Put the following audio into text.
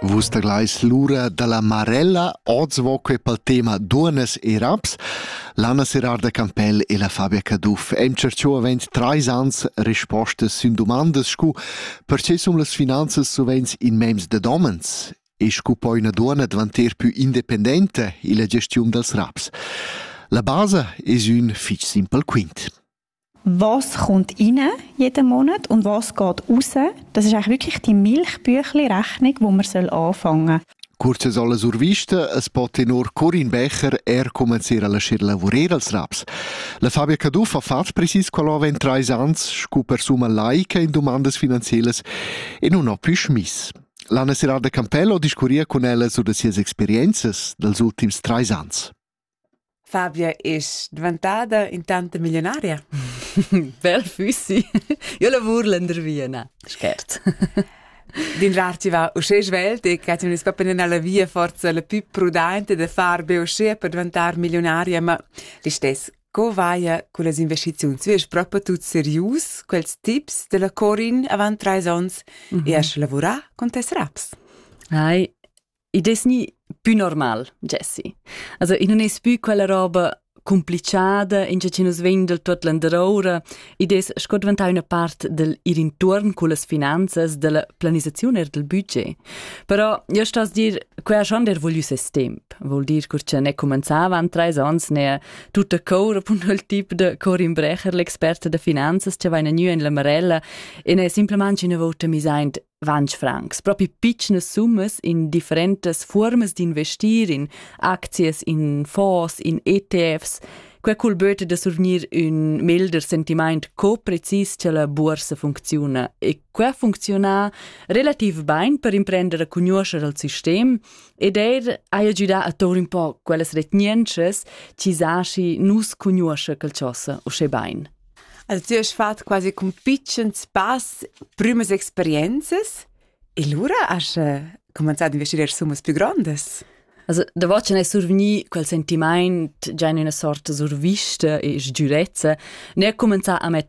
Vus taglais l'ura dalla Marella, oz vo quei pel tema duonas e raps. L'Anna Serarda Campell e la Fabia Caduff em cerchò avent trais ans rispostas sün dumandas scu perche sun las finanzas sovents in mems da domens e scu poi üna duonna dvanter pü independenta illa gestiun dals raps. La basa es ün fich simpel quint. was kommt rein jeden Monat und was geht raus. Das ist eigentlich wirklich die Milchbüchli-Rechnung, wo man soll anfangen soll. Kurzes alle zur Vista, es pote nur Corin Becher, er commenziera la scir lavurer als raps. La Fabia Caduff ha fatg precis quella avant trais ans, scu persuma laica in domandas finanzielas e non ho più schmiss. L'Anna Serrada Campello discurria con ella su da sias experienzas dels ultims trais ans. Fabia es dvantada intanta millionaria? Bel füssi. Io lavur lendervia, na, schert. Dinrar ti va usce svelt e che ti ne scoppi nella via forza la più prudente da far be usce per diventar milionaria, ma l'istes, co vaia con las investizioni? Tu es proprio tut serius, quels tips della Corin avant trais ons mm -hmm. e a sche lavurà con tes raps? Ai, I des ni pü normal, Jessie. Also, i non es pü quella roba complichada, in che nus vegn del tuot landeroura, id es sco diventà üna part del ir intuorn cullas finanzas, della planisazione e del budget. Però io sto a dir, quella ha schon der vogliü ses temp, vuol dir cur che ne comenzava an treis ans ne tutta cour appunto il tip de Corin Brecher, l'experta de finanzas, che va in gnü in la Marella e ne simplement una volta mis aint 20 francs, propi pitschnas summas in differentas fuormas d'investir in aczias, in fonds, in ETFs. Quei cul böte da survgnir ün melder sentiment co-precis che la boursa funcziuna e quei funcziona relativ bain per imprender a conoscer al sistem ed eir haja giudà a tour un po quellas retgnentschas chi zaschi nus conosce quel chosa uschè bain. El tü hast fat quasi cun pitschens pass prümas experienzas e lura has cumanzà ad investier summas plü grondas. Also, da vacin è survgni quel sentimaint già in üna sorta survista e sgürezza, ne ha cumenzà a metter